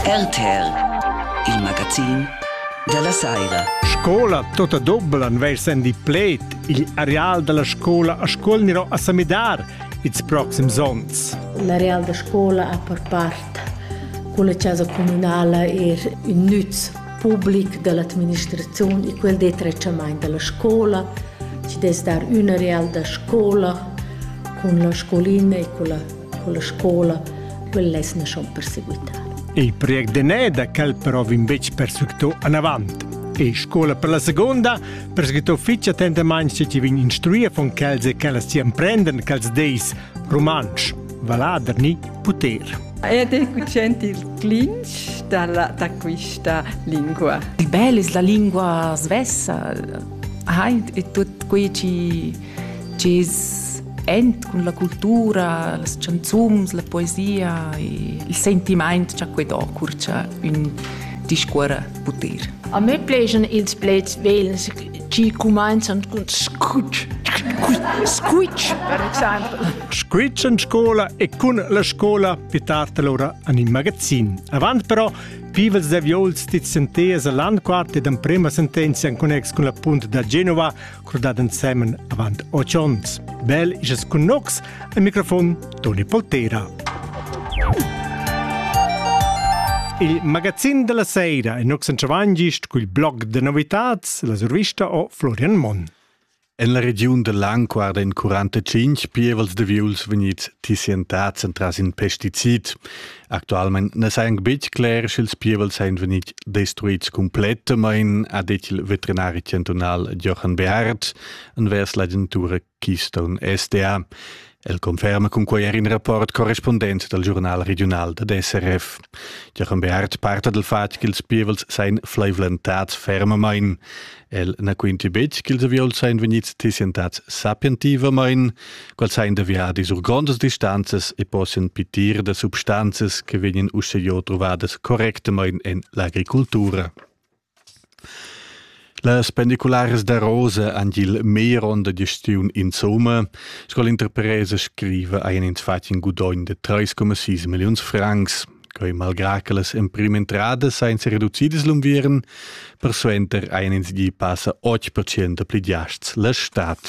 RTR, il magazin dalla saira. Scola tota dobbel an veir sendi pled igl areal dalla scola a scola niro a samidar ils proxims onns. L'areal da scola a per part con la casa comunale er in nüz public dall'administrazione e quel de trecciamaint dalla scola. Ci des dar un areal da scola con la scolina e con la con la scola, quel less na schon perseguitar. Il project de Neda quel però vin betg perseguitò anavant. E scola per la seconda perseguitò fitg attentamain se ci vin instruir von quels e quellas ci emprenden quels deis romansch, valader ni puter. Ed è cucent il clinch da, da questa lingua. Il bel è la lingua svessa, hai è tutto qui ci chi's ent cun la cultura, las chanzuns, la poesia e il sentimaint cha que do cur cha ün discuorra puter. A me plejan ils pleds vels chi cumainzan cun squitsch. Squitsch, per exemple. Squitsch in scola e cun la scola pitarta lura an in magazin. Avant però, pivels de viols dit senteas a landquart ed emprema sentenzia in connex cun la punt da Genova, curdad ensemen avant 8 onns. Bel isas cun nox, al microfon Toni Poltera. Il magazin della sera è Nox Ciavangist col blog de novitats, la survista o Florian Monn. En la regiun del Lang guarda in 45 pievels de viuls vegnits tissientads entras in pesticid. Actualmein ne sa anc betg cler, sch'ils pievels ein vegnit destruits complettamain, ha detg il veterinari chantunal Jochen Beard envers l'agentura Keystone SDA. El conferma cunquei er in rapport correspondent dal giurnal regional da SRF. Jochen Beard parta dal fatg ch'ils pievels sein fleivlentads fermamain. El na quinti betg ch'ils avieuls sain vegnids tissientads sapientivamain, quels sain da viadis sur grondas distanzas e possian pitir da substanzas che vegnan uschè truvadas correctamain en l'agricultura. Las pendicularas da Rosa han il meglier onn da gestiun insomma, sco l'interpresa scriva ein ins fatg in gudogn de 3,6 milliuns francs. Quei malgrà che las emprima entradas ein sereducidas l'unviern, persuenter ein ins gie passa 8% pli giasts la stad.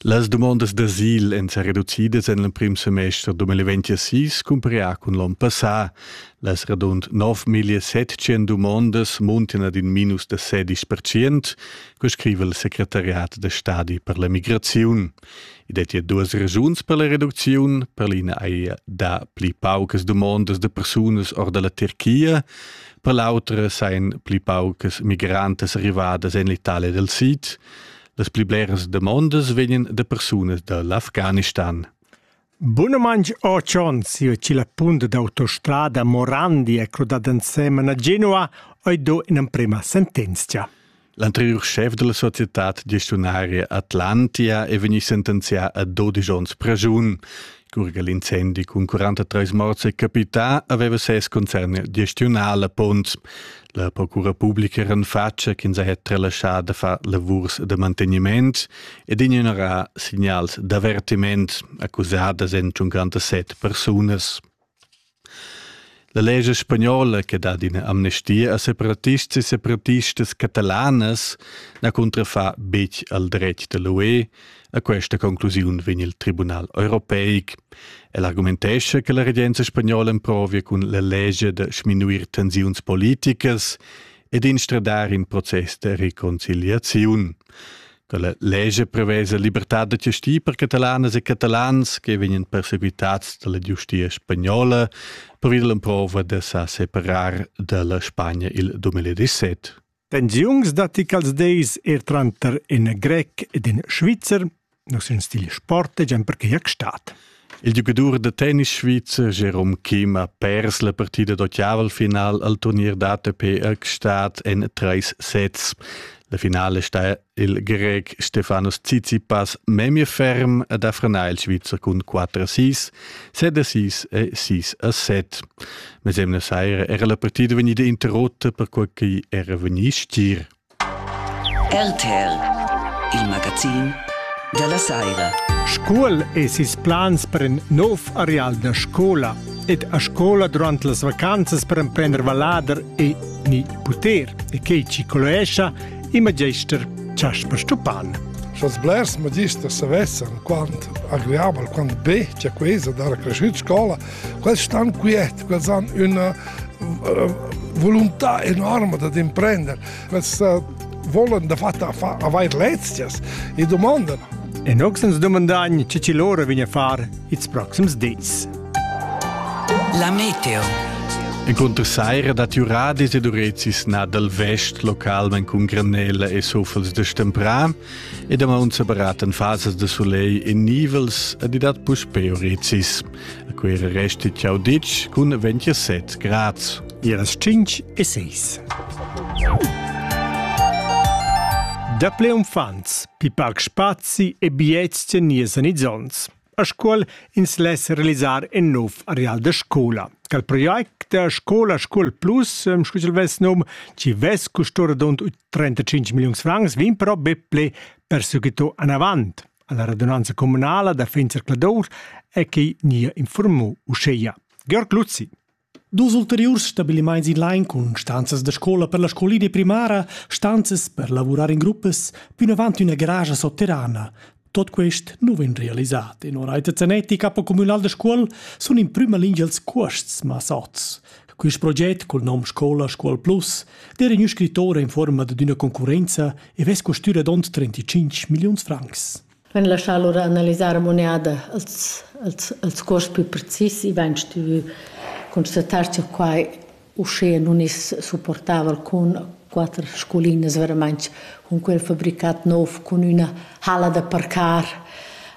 Las dumondas d'asil èn sa reducidas en l'emprim semester 2026 cumparià cun l'onn passà. Las radund 9.700 dumondas muntan ad in minus da 16%, co scriva il secretariat da stadi per la migraziun. I dettia duas resuns per la reducziun. Per l'ina haja dà pli paucas dumondas da persunas or da la Turchia, per l'autra sajan pli paucas migrantas arrivadas en l'Italia dal Sid. Las pli bleras demondas vegnan da persunas da l'Afganistan. Bunamain otg onns siu chi la punt d'autostrada Morandi è crudada ensemen a Genua oi do in'emprema sentenzia. L'anteriur schef della societad gestiunaria Atlantia è vegni sentenzià a 12 onns pregiun. Curga l'incendi cun 43 morts è capità, aveva ses concern gestiunà la punt. La procura publica era en faccia ch'ins ha relaschà da far lavurs da mantegniment ed ignorà signals d'avertiment accusadas en 57 persunas. La legge spagnola che dat ina amnestia a separatists e separatistas catalanas na cuntrafa betg al dretg da l'UE A questa conclusiun vegn il Tribunal europeic. El argumentescha che la regenza spagnola emprovia cun la legge da sminuir tensiuns politicas ed instradar in process de reconciliaziun. Con la legge prevesa libertà da gestire per catalanas e catalans che vengono perseguitati dalla giustia spagnola per via dell'emprova de sa separar dalla Spagna il 2017. Pensiuns datti quels dis er tranter in grec ed in svizzer. Nus in stil sport e gian perquai stat. Il giocatore da tennis svizzer Jerome Kim ha pers la partida d'ottaval-final al turnier d'ATP Ergstadt en treis sets. La finale sta il grec Stefanus Tsitsipas memie ferm ad affrenà il Svizzer cun 4 a 6, 7 a 6 e 6 a 7. Mesemna saira era la partida vegnida interrotta per quel che era vegnì stir. RTL, il magazin della saira. Scuol es ils plans per in nov areal da scola ed a scola durant las vacanzas per emprender vallader e ni puter e che ci coloescia i magister Chasper Stupan. Sch'als blers magisters savessan quant agreabel, quant be cha quesa d'ara cresciut scola, quels stan quiet, quels han üna eh, volontà enorme da imprender, quels eh, volen da fatta avair lezias e domandan. En oxens domandagn, ce ci loro vigna far its proxims dis. La meteo. Encunter saira dat Uradis ed Urezis na dal vest localment cun granella e sofels de stemprà ed a maun separatan fasas de soleil e nivels ed dat puspè Urezis. A quera resti ciao ditg cun 27 grads. Iras 5 e 6. Daple umfants, pi parc spazi e biets nies en izzons. a scuol ins less realisar in nov areal da scola. Cal project da scola Scuol Plus, ähm, scusil vess num, ci vess custura dont 35 milliuns francs, vin però beple per sucito anavant. Alla radunanza comunala da Finzer Cladour è che nia informò uscheia. Georg Luzzi. Dus ulteriurs stabilimaints in lain cun stanzas da scoula per la scolina primara, stanzas per lavurar in gruppas, pünavant üna garage sotterrana. Tot quest nu vegn realisat e no Reiter Zanetti, capo communal da scuol, sun in prüma lingia ils cuosts massats. Quist proget col nom Scola Scuol Plus d'eira ün scrittura in fuorma dad üna concurrenza e vess custü radund 35 milliuns francs. Vegn laschà lura analisar a muneda els, els, els cuors pü precis. I vain stuvü constatar cha quai uschea nun es supportava alcun quatter sculinas veramaing cun quel fabricat nouv, cun üna halla da parcar.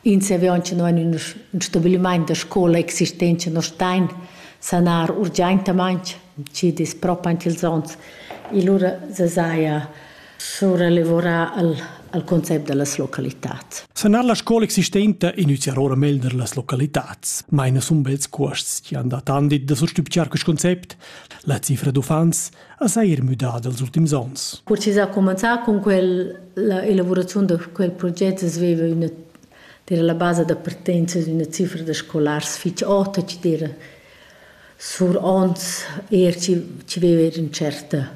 Ins e auncha no in ün, ün stabilimaint da scoula existent cha no stain sanar urgiaintamaing, chi'd es propi aint ils ons. E lura se saja sur elavurar il, il concept dallas localitads. Sanar la scola existenta inizia ora melder las localitads. Meina sun bels cuosts che han dat andit da sustupciar quest concept. La cifra d'uffants ha seir müdada els ultims ons. Precis a cominciar con quel, la elaborazione da quel progetto sveva una era la base da partenza di una cifra da scolars fitch ota, che era sur ons eir chi chi veva eir ün certa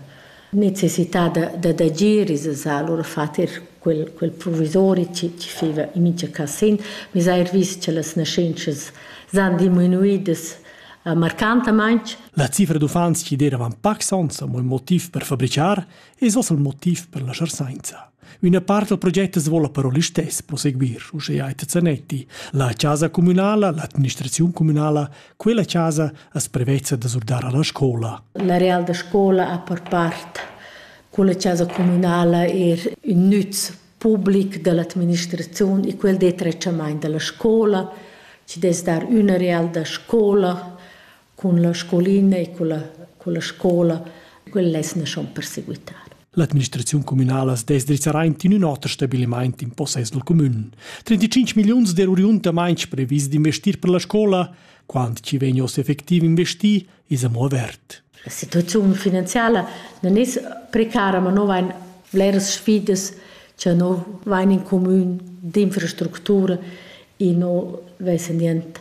necessità da da d'agir, es es alura fat eir quel quel provisori chi chi feva in mincha cas sin. Meis eir vis cha las naschentschas s'han diminuidas marcantamaing. La cifra d'uffants chi d'eiran pacs ons amo ün motiv per fabrichar es hoz il motiv per la scharsainza. Üna part dal proget as voula però listess proseguir, uschea Etta Zanetti. La chasa communala, l'administraziun communala, quella chasa as prevezza da surdar alla scola. La real da scola ha per part quella chasa communala er ün nüz public dall'administraziun e quel detretschamaint dalla scola, ci des dar üna real da scola cun la scolina e cun la, cun la scola, quella es naschond per seguitar. L'administraziun communala dess drizzarà in ün oter stabilimaint in possess dal comün. 35 milliuns d'euriunt amainch previs d'investir per la scola, quant chi vegnos effectiv investir, is amo avert. La situaziun finanziala non es precara, ma no vain bleras sfidas che no vain in comün d'infrastructura e no vesen dient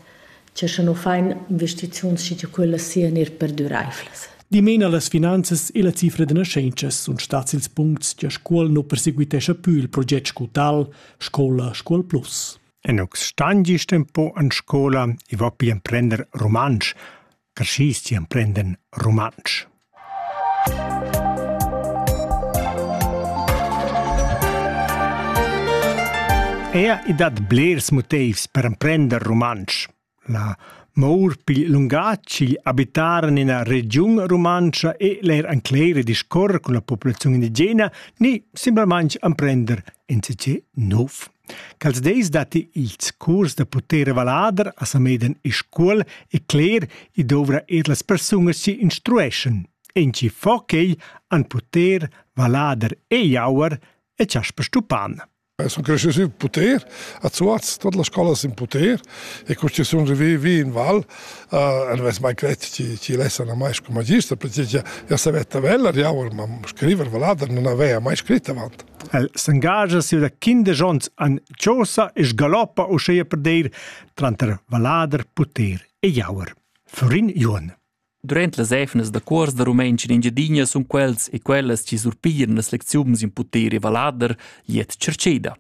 Tge sche nu fain investiziuns schi che quellas sian er perduraivlas. Dimena las finanzas e la cifra da nascentschas sun stats ils puncts che Scuol nu perseguitescha più il proget scutal Scola Scuol Plus. Enux Stangi tempo an scola e va pi emprender rumantsch, carschisti emprenden rumantsch. Ea i dat blers motivs per emprender rumantsch. La mour pigl lungatg igl abitar en ina regiun rumantscha e leir encleire discorre cun la populaziun indigena ni simplamaintg emprender insatge nov. Quels deis datti ils curs da puter e vallader a Sameden e Scuol e cler i dovra er las persunas chi instrueschan. En chi fo quei han puter, vallader e jauer e Chasper Stupan. Sono cresciuti in poter, a Zuaz, tutte le scuole in poter e questi sono arrivati in val, uh, non avessi mai creduto ci, ci lassano mai come magista perché io sapevo tabella, io ma scrivere vallader non aveva mai scritto avanti. El s'engascha sia da quindesch onns an chosa e sgaloppa uscheia per deir tranter valader, puter e jauer. Florin Juon. Durant las efnas da cuors da rumentsch in Engiadina sun quels e quellas chi surpiglian las lecziuns in puter e valader jiet cerceda.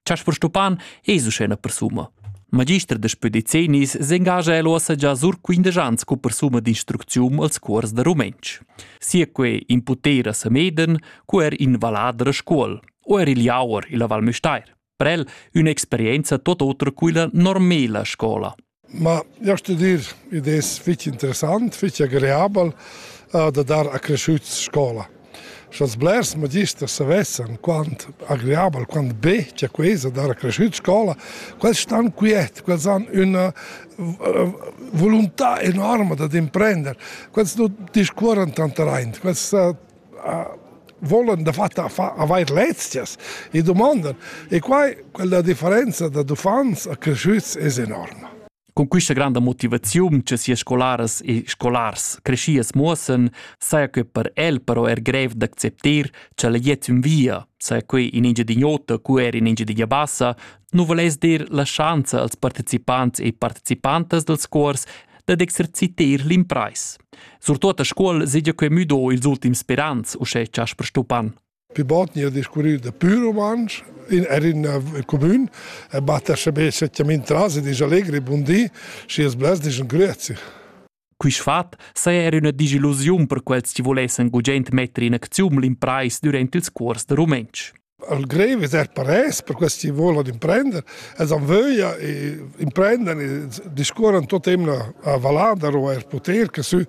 Chasper Stupan es uschena persuma. Magister da spedizinis s'engascha el ossa già sur 15 ans cu persuma d'instrucziun als cuors da rumentsch. Sia que in putera Sameden, cu er in vallader a scuol, o er il Jauer illa Val Müstair. Per el un'experienza tot otra quilla normela scola. Ma io studir idees fitch interessant, fitch agreabel eh, da dar a cresciuts scola. Sch'als blers magister savessan quant agreabel, quant be c'è quesa dar a cresciuts scola, quels stan quiet, quels han una eh, volontà enorme da imprender, quels non discuoran tanta reint, quels eh, volan dafatta avair lezias e domandan. E quai, quella differenza da uffants a cresciuts es enorma. Con questa grande motivazione che sia scolaras e scolars crescias muossen, saja che per el però er grev d'acceptar che la jet in via, saja che in Engiadin'Ota, cu er in Engiadin'Abassa, nu volais dir la schanza als partecipants e participantas dals cuors dad exerciter l'impreis. Surtot a scuol sedia que müdo ils ultims sperants, uschè Jasper Stupan. Vi botni a discurrir da pur rumantsch in er in comün e batter sebe setjament tras e dis allegri bundi si es blas dis grüezi. Quist fat saja er üna disillusiun per quels chi vulessan gugent metter in acziun l'imprais durant ils cuors da rumentsch. al grev es er parès per quels chi volan imprender, els han vöglia e imprendan e discuorran tot emna a Valada o eir poter che sü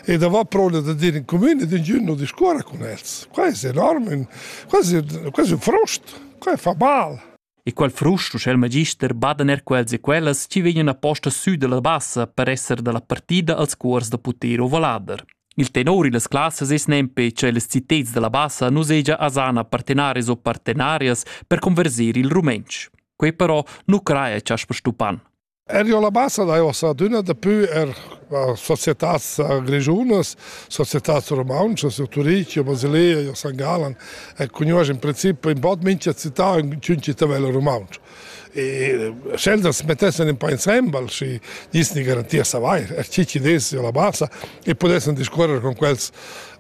e da va proda da dir in comune ed ingün non discuorra cun els. Quai es enorm, ün, quasi, quasi un frost, quai fa mal. E qual frust uschè magister badan er quels e quellas chi vegnan aposta sü dalla bassa per esser dalla partida als cuors da puter ovalader. Il tenor illas classas es nempe che les citets dalla bassa nu segia asana partenaris o partenarias per converser il rumentsch. Quei però nu craia chasper Stupan. Erio la bassa dai ossa adüna dapü er societats grischunas, societats rumauntschas, il Turich, il Basilea, il San Galan e cugnuosch in princip ün bod mincha città ün città vela rumauntsch. E sceltas mettessan un po insembel și niss ni garantia savair er chi chi dess la bassa e pudessan discuorrer con quels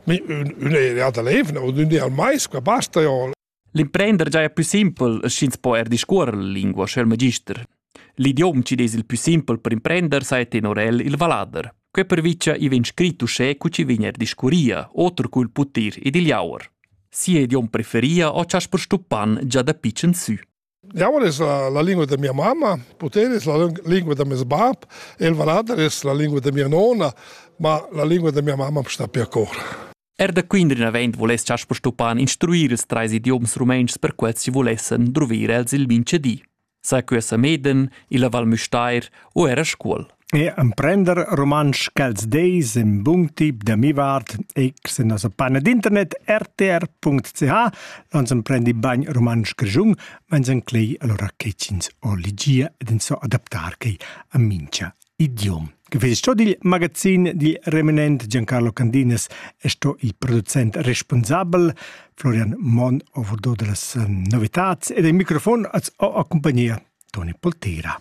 ün'area da l'Evna o d'ün di al mais, qua basta jo L'imprender giaja pü simpel, sch'ins po eir discuorrer la lingua sco il magister. L'idiom chi'd es il pü simpel per imprender saja tenor el il vallader. Quai pervicha i vegn scrit uschè cu chi vegn eir discurria, oter cul putir ed il jauer. Sia idiom preferia o cha's perstuppan già da pitschen sü. Diavol es la lingua da mia mamma, Putel es la lingua da meis bap, el valader es la lingua da mia nona, ma la lingua da mia mamma sta per cor. Er da Quindrin avend voless chas Stupan instruir ils treis idioms rumentschs per quels si volessen druvir els il minchedi. Sa que sa Meden, il Val Müstair o era Scuol. E emprender rumantsch ch'els deis in bun tip da mi vart ex in nossa panna d'internet rtr.ch, ans emprendi bagn rumantsch grischun, meins enclei allora che ch'ins o ligia ed ins so adaptar quei a mincha idiom. Gefes sto dil magazin di reminent Giancarlo Candinas è sto il producent responsabel Florian Mon overdo delle novitats ed il microfon az ho accompagnia Toni Poltera.